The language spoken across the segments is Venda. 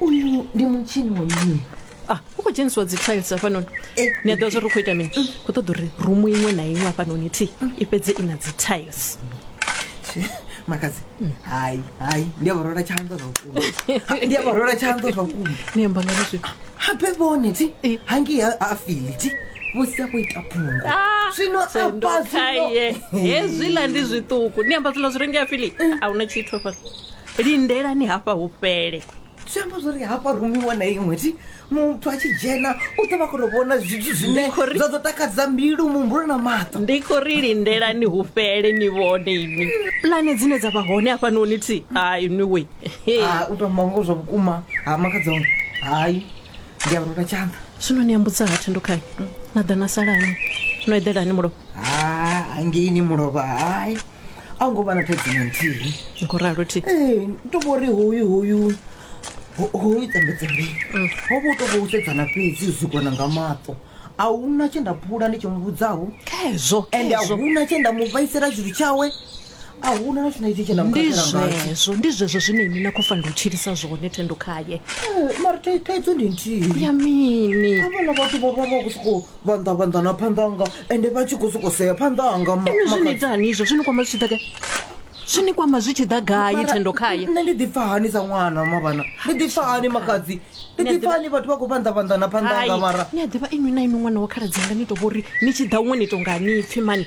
uyu ndi mutshini wa mini ah u khou dzhenisiwa dzi tiles hafhanoni ni a ḓivha zwori u khou ita mini khou ṱoḓa uri rumu iṅwe na iṅwe hafhanoni thi i fhedze i na dzi tiles makadzi hai hai ndi a vharola tshanḓo zwa vhukuma ndi a vharola tshanḓo zwa vhukuma ni amba ngani zwino habe vhone ti hangi ha ha fili ti vho sia khou ita phungo zwino afha zwino sendokaye hezwiḽa ndi zwiṱuku ni amba zwiḽa zwi rengea fili a huna tshithu hafhano lindelani hafha hu fhele zwi amba zwori hafha rumiwa na iṅwe ti muthu a tshi dzhena u ḓo vha kona u vhona zwithu zwine zwa ḓo takadza mbilu muhumbulo na maṱo ndi khou ri lindelani hu fhele ni vhone ini pulane dzine dza vha hone hafhanoni ti hai niwe Ah, u tamba ngo zwa vhukuma ha makadzone hai ndi a rula tshanḓa zwino ni ambudza ha thendukhani na ḓa na salani no eḓelani mulovha ha hangeini mulovha hai a hu ngo vha na thaidzo na nthihi ndi khou ralo thi ee to vho ri hoyu hoyu ho- hoyu tambedza ri ho vha u to vha u sedzana fhedzi u sikona nga maṱo a huna tshe nda phula ndi tshi mu vhudzaho khezwo ende a khezwo huna tshe nda mu vhaisela tshithu tshawe a huna na tshine tshe nda mu ndi khakhela ngatsho zwezwo ndi zwezwo zwine ini na khou fanela u tshilisa zwone thendo khaye Eh, mara thai- thaidzo ndi nthihi ya mini havhala vhathu vho vha vha khou sokou vhanḓa vhanḓa na phanḓa anga ende vha tshi khou sokou sea phanḓa anga ma- inwi zwi ni makhadzi. ita hani izvo zwi ni kwama zwi tshi ḓa gai zwi ni kwama zwi tshi ḓa gai Mara, thendo khaye nṋe ndi ḓipfa hani sa ṅwana mavhana ndi ḓipfa hani makhadzi ndi Nṋe ḓipfa ḓi- hani vhathu vha khou vhanḓa vhanḓa na phanḓa anga mara ni a ḓivha inwi na inwi ṅwana wa khaladzi anga ni to vhori ni tshi ḓa huṅwe ni tonga ni pfhi mani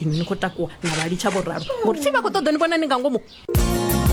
inwi ni khou takuwa na vha litsha vho ralo ngori thi vha khou ṱoḓa ni vhona ni nga ngomu